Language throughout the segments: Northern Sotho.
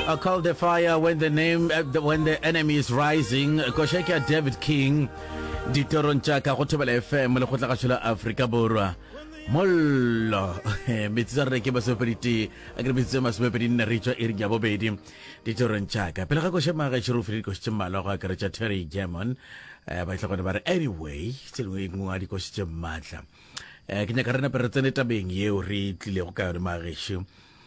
I call the fire when the name uh, the, when the enemy is rising koša ke ya david king ditorong tša ka go thobela fm le go tla gašo la afrika borwa mollo metsi tsa reke masomepeditee a ke re metsi tsa masomepedi nne re tswa e re ja bobedi ditorong tša ka pele ga koše maga šero o fele dikoši tše mmalwa go akaretša terry german um ba itlha gone ba re anyway tse dingwe e nngwe a dikoši tše maatla um ke nyaka re nape re tsene tabeng yeo re tlilego ka yone magešu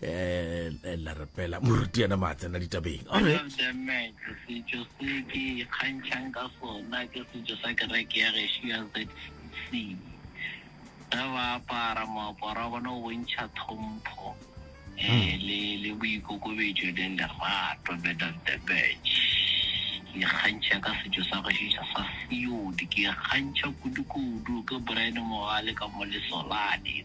eh la re pela moruti yena ma tsena ditabeng ore setšo se ke ikgantšhang ka sona ke setšo sa kereke ya gešo ya zc ge ba apara moaparo wa bona o bontšha thompho um le le boikokobetšo le lerato bed of the bech ke ikgantšha ka setšo sa gešo sa seodi ke ikgantšha kudu-kudu ke brian mogale ka mo lesolane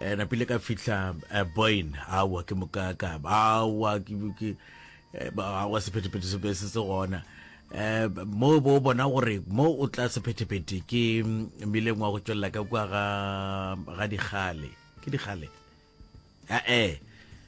eh, napile ka fihla eh, boin awa ke mokaka awa eh, awa sephetephete se se se gona eh mo bo bona gore mo o tla sephetephete ke mm, mileng wa go tswelela ka kwa ga ga digale ke digale eh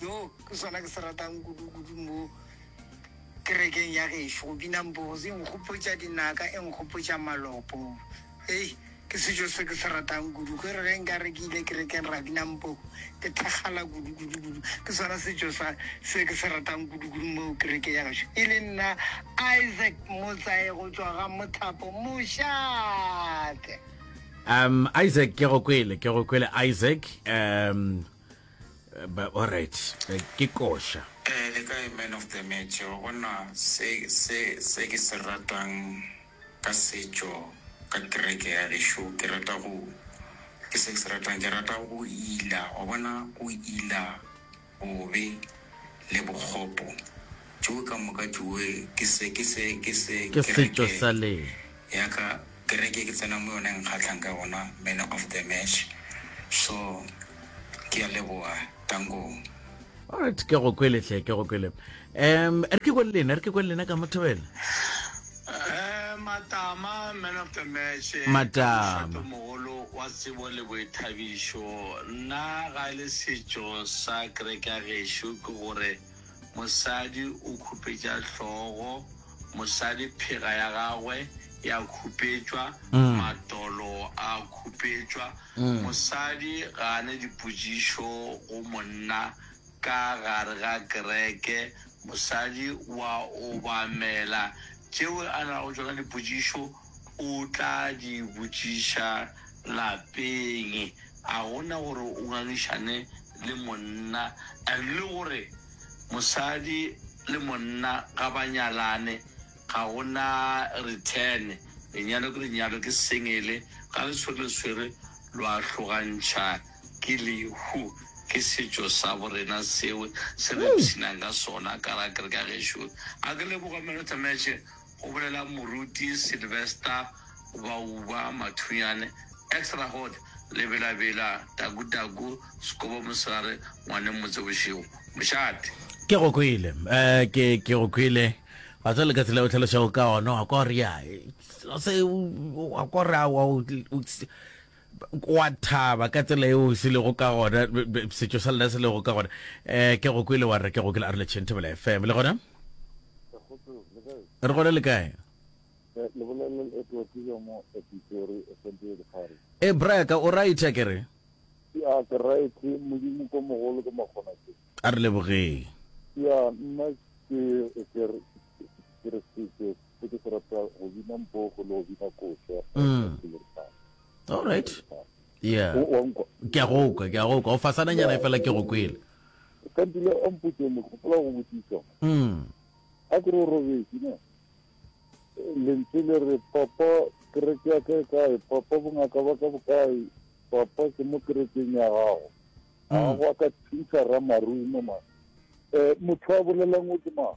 Yoo ke sona ke se ratang kudu-kudu mo kerekeng ya gešo, go bina mbozi. E nkgopotša dinaka, e nkgopotša malopo. Hei, ke setšo se ke se ratang kudu. Ke re ge nka re ke ile kerekeng ra bina mbo, ke thakgala kudu, kudu, kudu. Ke sona setšo sa, se ke se ratang kudu-kudu mo kerekeng ya gešo. E le nna Isaac Motsae go tšwa ga Mothapo Mošate. Um, Isaac, ke go kwele, ke go kwele Isaac. Um. ba alright eh, ke koša eh le ka man of the match wa bona se se se ke se ratang ka setšo ka kereke ya gešo ke rata go ke se ke se ratang ke rata go ila wa bona go ila bobe le bokgopo tšeo ka moka tšeo ke se ke se ke se ke setšo sa lena ya ka kereke e ke tsenang mo yona e nkgatlhang ka gona man of the match so ke a leboga tankong. Alright, ke go kwele hle, ke go kwele. Um, re ke kwele lena, re ke kwele lena ka motho wena. Eh, matama man of the match. Eh, matama. Moholo wa tsebo le boithabišo. Nna ga le setšo sa kereke ya gešo ke gore Mosadi o khupetša hlogo, mosadi phega ya gagwe ya khupetšwa, matolo a khupetšwa. Mosadi ga a ne dipotšišo go monna ka gare ga kereke. Mosadi o a obamela. Tšeo a nago tšona dipotšišo o tla di botšiša lapeng. A go na gore o ngangišane le monna and le gore mosadi le monna ga ba nyalane ga go na return, lenyalo ke lenyalo ke sengele ga le swere le swere lo a hlogantšha ke lehu, ke setšo sa bo rena seo se re ipshinang ka sona ka ra kereke ya gešo. A ke leboge Melotha Match. go bolela moruti Sylvester Bauba Mathunyane, ex Rahot, Lebelabela, Taku Taku, Sekobo Mosegare, Ngwaneng Motse Bošego, Mošate. Ke go kwele, ke, ke go kwele. Ga tswale ka tsela o tlhalošago ka ona, wa kwa gore ya, ga se, wa kwa gore, wa, Wa thaba ka tsela eo se lego ka gona, setšo sa lena se lego ka gona. Eh, ke go kwele wa re ke go kwele Arolotšheng Thobela FM. Le gona? Re gona le kae? E braya ka o right a kere? Ya ke right modimo ko mogolo ke makgona ke. A re lebogeng. Ya nna ke ke ke re se se ke se rata go bina mpogo le go bina koša mm. all right yeah ke a go kwa ke a go kwa o fasana nyana e fela ke go kwele ka dile o mpotse mo gopola go botsisa mm a ke ro robetse ne lentswe le re papa kereke ya ka e kae papa bongaka ba ka bokae papa ke mo kerekeng ya gago mm. a go ka thusa ra marumo ma um motho a bolelang o ke mang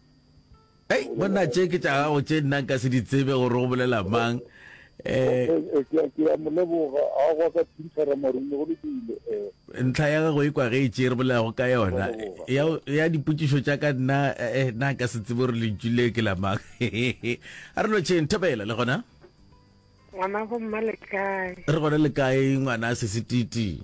Hey, monna tše ke tša gago tše nna nka se di tsebe gore go bolela mang eh, eh, eh, ke ya moleboga a gwa ka phintshara marume go lokile eh. ntlha ya gago e kwa ge e tše re bolelago ka yona ya, ya dipotšišo tša ka nna eh, nna nka se tsebe gore lentšu le ke la mang a re no tšheng thobela le gona ngwana go mma le kae re gona le kae ngwana a sesititi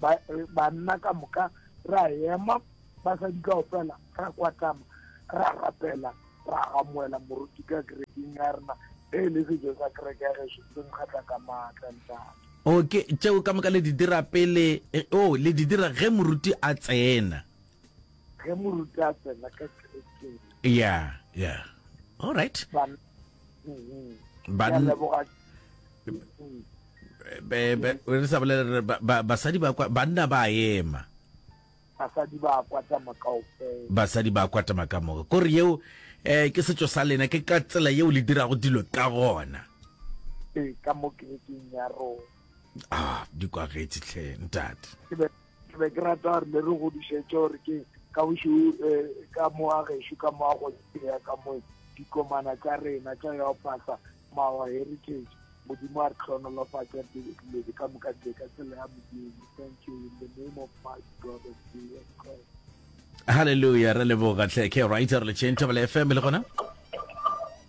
ba banna ka moka ra ema basadi kao fela ra kwatama ra rapela ra amoela moruti ka kerekeng ya rena e le sejo sa kereke ya geso se nkgatla ka maatla ntate o ke tšeo ka moka le di dira pele eh, o le di dira ge moruti a tsena ge moruti a tsena ka kerekeng ya ya all right Ban- re sa bolele basadi ba kwa banna ba ema basadi ba kwata makaofela basadi ba kwata makamoka kore yeo eh ke setso sa lena ke ka tsela yeo le dirago dilo ka gona ee ka mo kerekeng ya rona ah di kwagetse tlhe ntate ke be ke rata gore le re godišetše gore ke ka bošo eh, ka moa gešo ka moa go ya ka moe dikomana tša rena tša ya pasa mawa heritage modimo a re tlhonolofatša diledi ka moka tse ka tsela ya modimo thank you in the name of my god and jesus christ halleluja re leboga tlhe ke right re le chain table fm le gona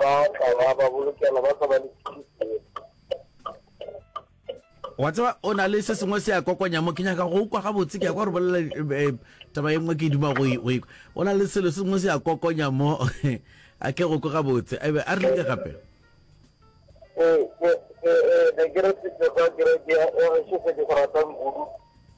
Ba tla ba ba bolokela, ba tla ba le Wa tseba o na le se sengwe se a kokonya mo ke nyaka go kwa gabotse ke ya kwa re bolela eh, taba e nngwe ke duma go e- go e- o na le selo se sengwe se a kokonya mo a ke go kwa gabotse a be a re ke gape Eh, eh, eh, eh, ne ke re se tsa kereke ya, ya Mešofe ke go rata mmudu.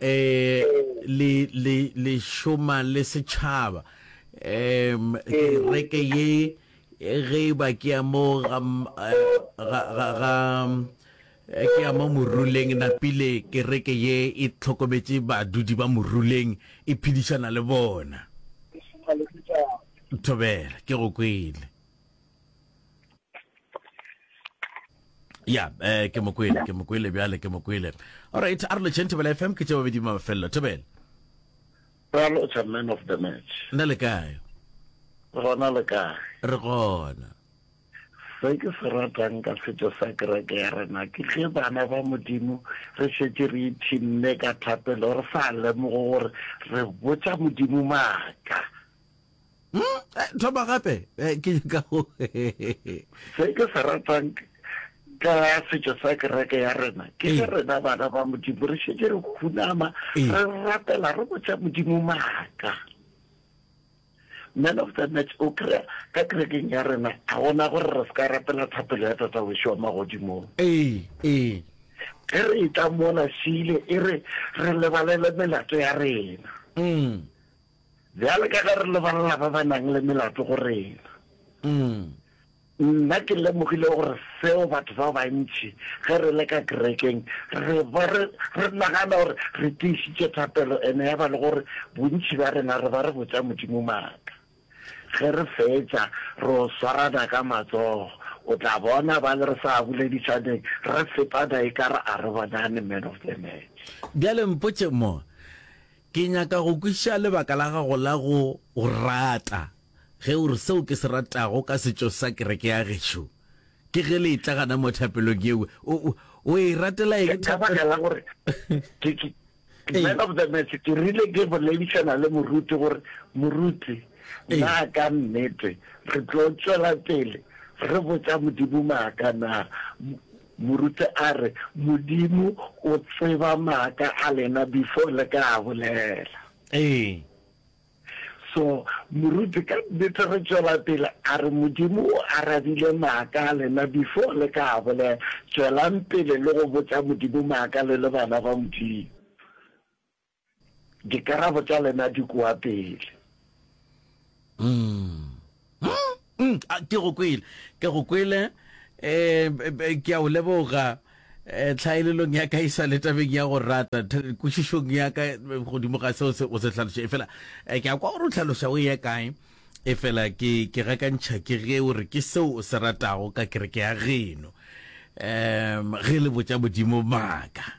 eh le le le shoma le setšhaba em kereke ye ge e ba ke ya mo ga ga ga ga eh, ke ya mo moruleng napile kereke ye e tlhokometše badudi ba moruleng e phedišana le bona thobela ke go kwele ya eh ke mokwele ke mokwele bjale ke mokwele alright a re lotšheng thobela fm ke tše babedi mafelelo thobela ra lotšha man of the match nna le kae gona le kae re gona se ke se ratang ka setso sa kereke ya rena ke ge bana ba modimo re šetse re ithinne ka thapelo re sa lemogo gore re botsa modimo maaka Hmm? Thoma gape ke nyaka go. Se ke se ratang ka setšo sa kereke ya rena ke ge rena bana ba modimo re šetse re khunama re rapela re botsa modimo maaka man of the match o kry-a ka kerekeng ya rena ga gona gore re se ka rapela thapelo ya tata wešo wa magodimong ee ee ge re e tla mola šile e re re lebalele melato ya rena mm. Bjale ka ge re lebalela ba ba nang le melato go rena, nna ke lemogile gore seo batho ba bantši ge re le ka kerekeng re ba re, re nagana gore re tiišitše thapelo ene ya ba le gore bontši bja rena re ba re botša Modimo maaka. Ge re fetša, re o swarana ka matsogo. O tla bona ba le re sa boledišaneng re fetana e ka re a re bonane, man of the match. Bjale mpotše mo, Ke nyaka go kwešiša lebaka la gago la go O rata. Ge o re, Seo ke se ratago ka setšo sa kereke ya gešo ke ge le etla gana mo thapelong yeo, o, o, o e ratela eng thapelo? Ke ka baka la gore ke, ke, man of the match, ke rile ke boledišana le moruti gore, Moruti, na ka nnete re tlo tšwela pele re botša Modimo maaka na? Moruti a re, Modimo o tseba maaka a lena before le ka a bolela. Ee. So, Moruti ka nnete re tšwela pele a re, Modimo o arabile maaka a lena before le ka a bolela. Tšwelang pele le go botša Modimo maaka le le bana ba Modimo. Dikarabo tša lena di kua pele. Mm. Mm, mm, ke go kwele, ke go kwele. Um, ke a o leboga um tlhaelelong ya ka e sa le tabeng ya go rata kwešišong ya ka godimo ga seo o se tlhaloša e fela um ke a kwa gore o tlhaloša o ye kae e fela ke ke gakantšha ke ge o re ke seo o se ratago ka kereke ya geno um ge le botša modimo maaka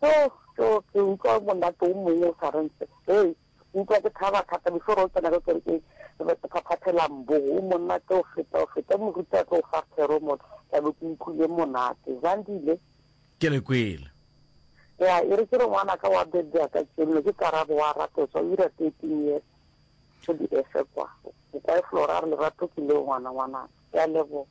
Tjo, tjo, ke utlwa monate o mongwe o sa reng sepe. Ke utlwa ke thaba thata before o tsena ka kerekeng. Ke be ke phaphathela mbo, o monate go feta, go feta moruti a tlo go fa thero mo, ka be ke utlwile monate. Zandile? Ke le kwele. Ya, e re ke re ngwanaka wa bebja ka tšenno, ke Karabo wa Ratoswa, o dira thirteen years go di-Efe kwa. O kwa e Flora, a re lerato ke leo ngwana, ngwanaka. Ke a leboga.